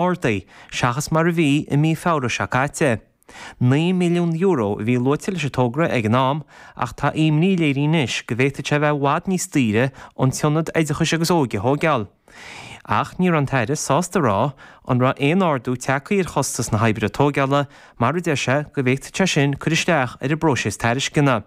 Ardaithe, seachas mar a bhí i mí Feabhra seo caite. €9 milliún a bhí luaite leis an togra ag an am ach tá imní léirithe anois go bhféadfadh sé a bheith i bhfad níos daoire an t-ionad oideachais agus óige a thóigeáil. Ach ní raibh an tAire sásta a rá an raibh aon ardú tagtha ar chostas na hoibre tóigeála mar a deir sé go bhféadfadh sé sin cur isteach ar an bpróiseas tairisceana.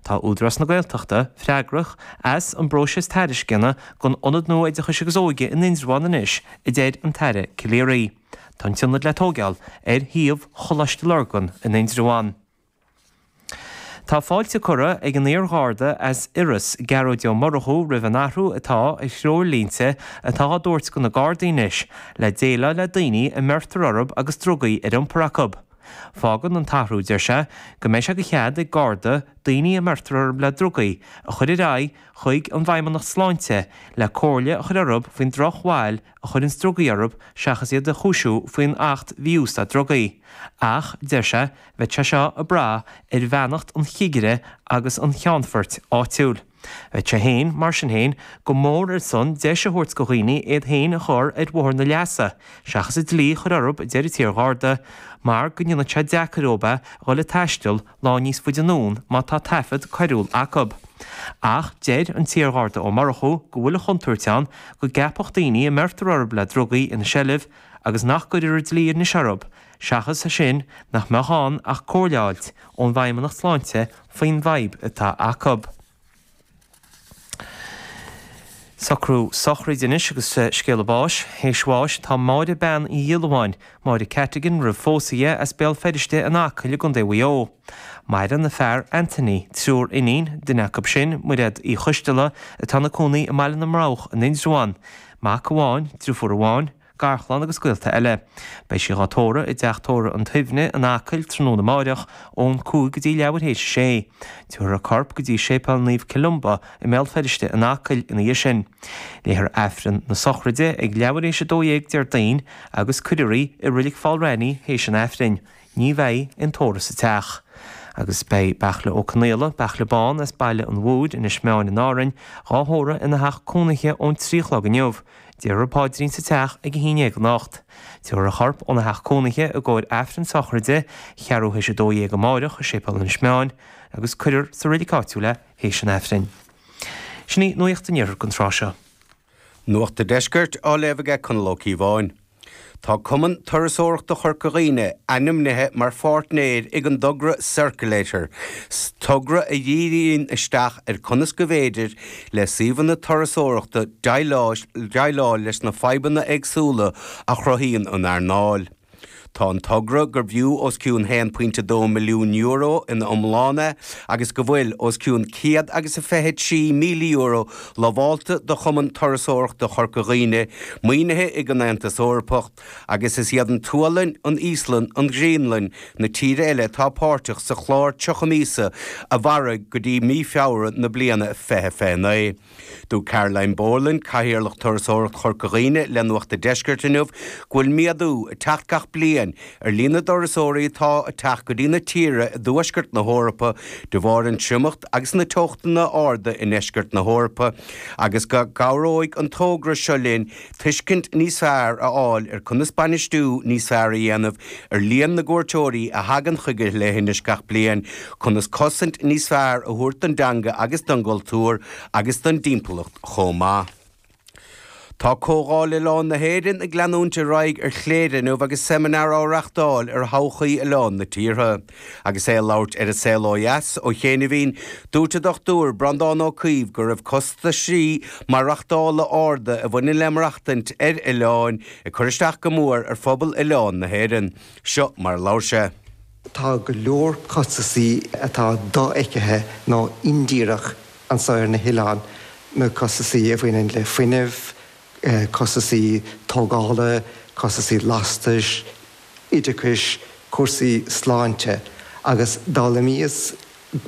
Tá Údarás na Gaeltachta freagrach as an bpróiseas tairisceana don Ionad nua Oideachais agus Óige in Indreabhán anois, a deir an tAire Calleary. Tá an t-ionad le tóigeáil ar shuíomh Choláiste Lurgan in Indreabhán. Tá fáilte curtha ag an iar-Gharda as Iorras, Gearóid Ó Murchú roimh an athrú atá ar threoirlínte atá á dtabhairt go na Gardaí anois le déileáil le daoine a mbeirtear orthu agus drugaí ar iompar acu. Fágann an t-athrú, deir sé, go mbeidh sé de chead ag Garda daoine a mbeirtear orthu le drugaí a chur ar aghaidh chuig an bhFeidhmeannacht Sláinte le comhairle a chur orthu faoin drochbhail a chuireanns drugaí orthu seachas iad a chúisiú faoin Acht Mhí-Úsáid Drugaí. Ach, deir sé, bheadh sé seo ag brath ar bheannacht an chigire agus an cheannfoirt áitiúil. Bheadh sé féin, mar sin féin, go mór ar son deis a thabhairt go dhaoine iad féin a chur ar bhóthar na leasa seachas an dlí a chur orthu a deir an t-iar-Gharda mar go ndéanfadh sé deacair dóibh a dhul ag taisteal lá níos faide anonn má tá taifead coiriúil acu. Ach deir an t-iar-Gharda Ó Murchú go bhfuil an chontúirt ann go gceapfadh daoine a mbeirtear orthu le drugaí ina seilbh agus nach gcuirfear an dlí anois orthu seachas sin nach mbeadh ann ach comhairle a fháilt ón bhFeidhmeannacht Sláinte faoin bhfadhb atá acu. Socrú sochraide anois agus scéala báis, théis bháis, atá Máire Bean Uí Dhiolluáin, Máire Cattigan roimh phósadh dhi, as Béal Feirste in Acaill i gContae Mhaigh Eo. Maireann a fear, Anthony, triúr iníon, duine acu sin, Mairéad Uí Choisdealbha, atá ina cónaí i mBaile na mBroghach in Indreabhán, mac amháin, driofúr amháin, Garchlann agus gaolta eile. Beidh sí dhá tórramh i dTeach Tórraimh an tSuibhnigh in Acaill tráthnóna amáireach ón 5 go dtí leathuair théis a 6. Tabharfar a corp go dtí Séipéal Naomh Columba i mBéal Feirste in Acaill ina dhiaidh sin. Léifear Aifreann na Sochraide ag leathuair théis a 12 Déardaoin agus cuirfear í i Reilig Pholl Raithní théis an Aifrinn. Ní bheidh aon tórramh sa teach. Agus beidh Beairtle Ó Conaola, Beairtle Bán as Baile an Mhothair, Inis Meáin in Árainn, dhá thórramh ina theach cónaithe ón trí a chlog inniu. Déarfar Paidrín sa teach ag a haon déag anocht. Tabharfar a chorp óna theach cónaithe i gcomhair Aifreann Sochraide, ceathrú théis a dó dhéag amáireach i Séipéal Inis Meáin, agus cuirfear sa Reilig Áitiúil é théis an Aifrinn. Sin í nuaíocht an Iarthair don tráth seo. Nuacht an Deiscirt á léamh aige Conall Ó Cíobháin. Tá Cumann Turasóireachta Chorca Dhuibhne ainmnithe mar pháirtnéir ag an dtogra Circulator, togra a dhíríonn isteach ar conas go bhféidir le suíomhanna turasóireachta déileáil leis na fadhbanna éagsúla a chruthaíonn an earnáil. Tá an togra gurbh fhiú os cionn €1.2 milliún ina iomláine é agus go bhfuil os cionn céad agus a fiche trí míle euro lamhálta do Chumann Turasóireachta Chorca Dhuibhne maoinithe ag an Aontas Eorpach agus is iad an tSualainn, an Íoslann, an Ghraonlainn na tíre eile atá páirteach sa chlár 30 míosa a mhairfidh go dtí mí Feabhra na bliana 2029. Dúirt Caroline Boland, Cathaoirleach Turasóireacht Chorca Dhuibhne le Nuacht an Deiscirt inniu go bhfuil méadú ag teacht gach bliain ar líon na dturasóirí atá ag teacht go dtí na tíre i dtuaisceart na hEorpa de bharr an triomacht agus na teochtanna arda i ndeisceart na hEorpa agus go gcabhróidh an togra seo linn tuiscint níos fearr a fháil ar chonas bainistiú níos fearr a dhéanamh ar líon na gcuairteoirí a thagann chuig an leithinis gach bliain, conas cosaint níos fearr a thabhairt don dteanga agus don gcultúr agus don dtimpeallacht chomh maith. Tá Comhdháil Oileán na hÉireann ag leanúint ar aghaidh ar Chléire inniu agus seimineár á reachtáil ar thodhchaí oileáin na tíortha. Agus é ag labhairt ar An Saol ó Dheas ó chianaibhín, dúirt an Dr Breandán Ó Caoimh go raibh costaisí maireachtála arda a bhaineann le maireachtaint ar oileáin ag cur isteach go mór ar phobal oileán na hÉireann. Seo mar a labhair sé. Tá go leor costaisí atá dofheicthe nó indíreach anso ar na hoileáin, na costaisí a bhaineann le fuinneamh, costaisí tógála, costaisí lastais, oideachais, cúrsaí sláinte agus d'fhoghlaimíos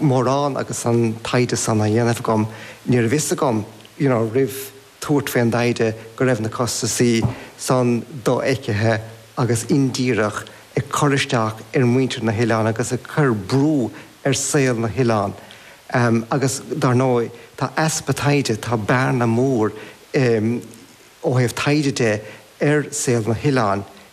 mórán agus an taighde san á dhéanamh agam ní raibh a fhios agam you know roimh tabhairt faoin dtaighde go raibh na costaisí san dofheicthe agus indíreach ag cur isteach ar mhuintir na hoileáin agus ag cur brú ar saol na hoileáin em agus dar ndóigh tá easpa taighde tá bearna mór em ó thaobh taighde de ar saol na hoileáin